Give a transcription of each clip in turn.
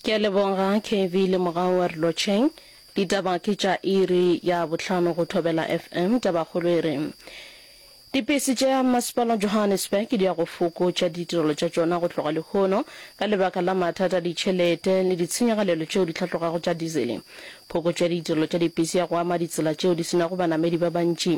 Ke a leboga KB le mogau wa re lotšheng. Ditaba ke tša iri ya bohlano go Thobela FM. Tabakgolo e re, Dipesi tša Masepala Johannesburg di ya go fokotša ditirelo tša tšona go tloga lehono ka lebaka la mathata a ditšhelete le ditshenyagalelo tšeo di hlatlogago tša dizele. Phokotšo ya ditirelo tša dipesi ya go ama ditsela tšeo di senago banamedi ba bantši.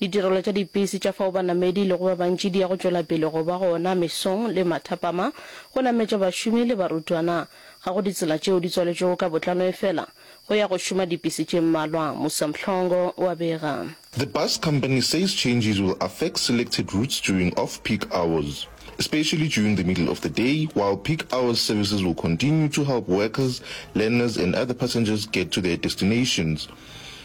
Ditirelo tša dipisi tša fao banamedi e lego ba bantši di ya go tšwela pele go ba gona mesong le mathapama go nametša bašomi le barutwana. Ga go ditsela tšeo di tswaletšwego ka botlano efela go ya go šoma dipisi tše mmalwa, Musa Mhlongo wa bega. The bus company says changes will affect selected routes during off-peak hours, especially during the middle of the day, while peak hours services will continue to help workers, learners and other passengers get to their destinations.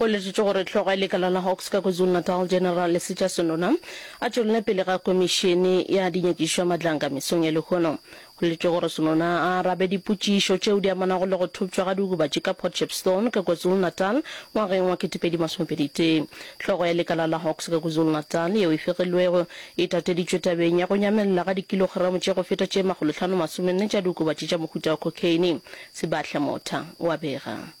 Go letšetšwe gore hlogo ya lekala la Hawks ka KwaZulu-Natal, General Lesitsha Sonona, a tšwelele pele ga komišene ya dinyakišo ya matlanka mesong ya lehono. Go letšwe gore Sonona a arabe dipotšišo tšeo di amanago le go thopšwa ga diokobatši ka Port Shepstone ka KwaZulu-Natal ngwageng wa 2021. Hlogo ya lekala la Hawks ka KwaZulu-Natal yeo e fegilwego e tateditšwe tabeng ya go nyamelela ga dikilogramo tše go feta tše makgolohlano masomenne tša diokobatši tša mohuta wa cocaine, Sebahla Motha wa bega.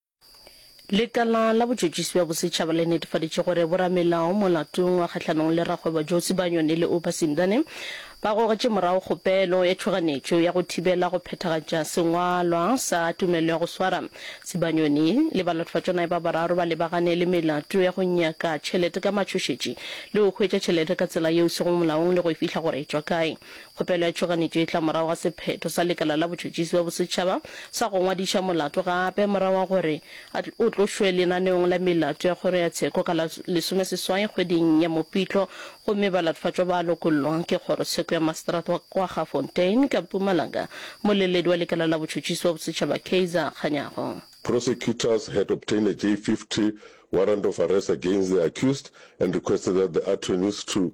Lekala la botšotšisi bja bosetšhaba le netefaditše gore boramelao molatong wa kgahlanong le rakgwebo Josi Banyoni le Oupa Simdane ba gogetše morago kgopelo ya tšhoganetšo ya go thibela go phethagatša sengwalwa sa tumelo ya go swara. Sibanyoni le balatofatšonae ba bararo ba lebagane le melato ya go nyaka tšhelete ka matšhošetši le go hwetša tšhelete ka tsela yeo e sego molaong le go e fihla gore e tšwa kae. Kgopelo ya tšhoganetšo e tla morago ga sephetho sa Lekala la Botšhotšhisi bja Bosetšhaba sa go ngwadiša molato gape morago ga gore o tlošwe lenaneong la melato ya Kgoro ya Tsheko ka la lesomeseswai kgweding ya Mopitlo gomme balatofatšwa ba lokollwa ke Kgorotsheko ya Maseterata wa Kwaggafontein ka Mpumalanga, Mmoleledi wa Lekala la Botšhotšhisi bja Bosetšhaba Kaizer Kganyago. Prosecutors had obtained a J-50 warrant of arrest against the accused and requested that the attorneys to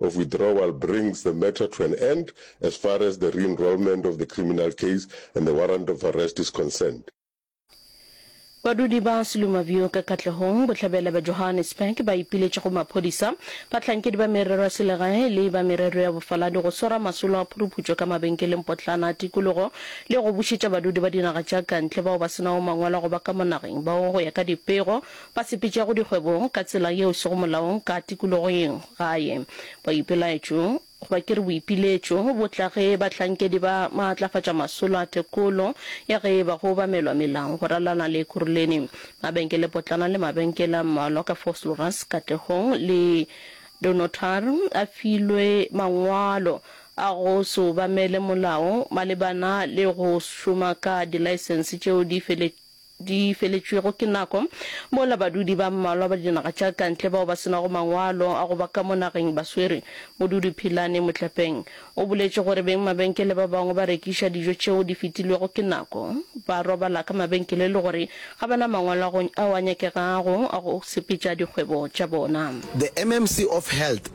of withdrawal brings the matter to an end as far as the re-enrolment of the criminal case and the warrant of arrest is concerned. Badudi ba Seluma View ka Katlehong bohlabela bja Johannesburg ba ipiletše go maphodisa, bahlankedi ba merero ya selegae le ba merero ya bofaladi go swara masolo a phuruputšo ka mabenkeleng potlana a tikologo le go bušetša badudi ba dinaga tša kantle bao ba se nago mangwalo a go ba ka mo nageng bao go ya ka dipego Ba sepetšago dikgwebong ka tsela yeo sego molaong ka tikologong gae, boipelaetšo, goba ke re boipiletšo, bo tla ge bahlankedi ba maatlafatša masolo a tekolo ya ge e ba go obamelwa melao go ralala le Ekurhuleni, mabenkelepotlana le mabenkele a mmalwa ka Vosloorus, Katlehong le Dunnottar a filwe mangwalo a go se obamele molao malebana le go šoma ka dilaesense tšeo di feletšego. di feletšwego ke nako, mola badudi ba mmalwa ba dinaga tša kantle bao ba se nago mangwalo a go ba ka mo nageng ba swere. Modudi Philane Motlepeng o boletše gore beng mabenkele ba bangwe ba rekiša dijo tšeo di fetilwego ke nako, ba robala ka mabenkele le gore ga ba na mangwalo ao a nyakegago a go sepetša dikgwebo tša bona. The MMC of Health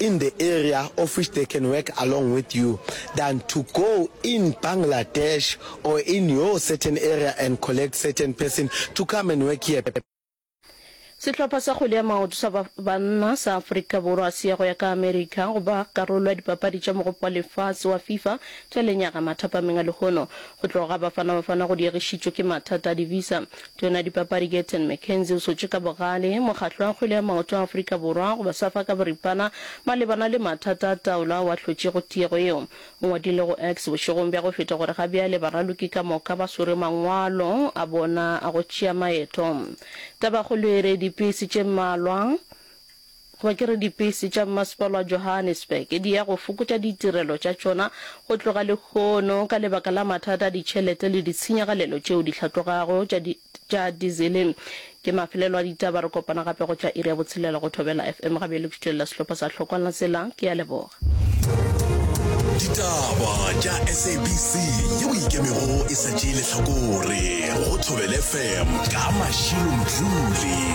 in the area of which they can work along with you than to go in Bangladesh or in your certain area and collect certain person to come and work here. Sehlopha sa kgwele ya maoto sa banna sa Afrika Borwa se ya go ya ka Amerika go ba karolo ya dipapadi tša Mogopo wa Lefase wa FIFA tša lenyaga mathapameng a lehono. Go tloga ga Bafana Bafana go diegišitšwe ke mathata a di-visa. Tona dipapadi Gayton McKenzie o swetše ka bogale Mokgatlo wa Kgwele ya Maoto wa Afrika Borwa goba Safa ka boripana malebana le mathata a taolo ao a hlotšego tiego yeo. O ngwadile go X bošegong bja go feta gore ga bjale baraloki ka moka ba swere mangwalo a bona a go tšea maeto. Tabakgolo e re dipisi tše mmalwa Goba ke re dipesi tša mmasepala wa Johannesburg di ya go fokotša ditirelo tša tšona go tloga lehono ka lebaka la mathata a ditšhelete le ditshenyagalelo tšeo di hlatlogago tša di, tša dizele. Ke mafelelo a ditaba. Re kopana gape go tšwa iri ya botshelela go Thobela FM. Ga bjale ke tšwelela sehlopha sa Hlokwana Tsela. Ke a leboga. Ditaba tša SABC yeo e ikemego e sa tšee lehlakore go Thobela FM ka Mashilo Mdluli.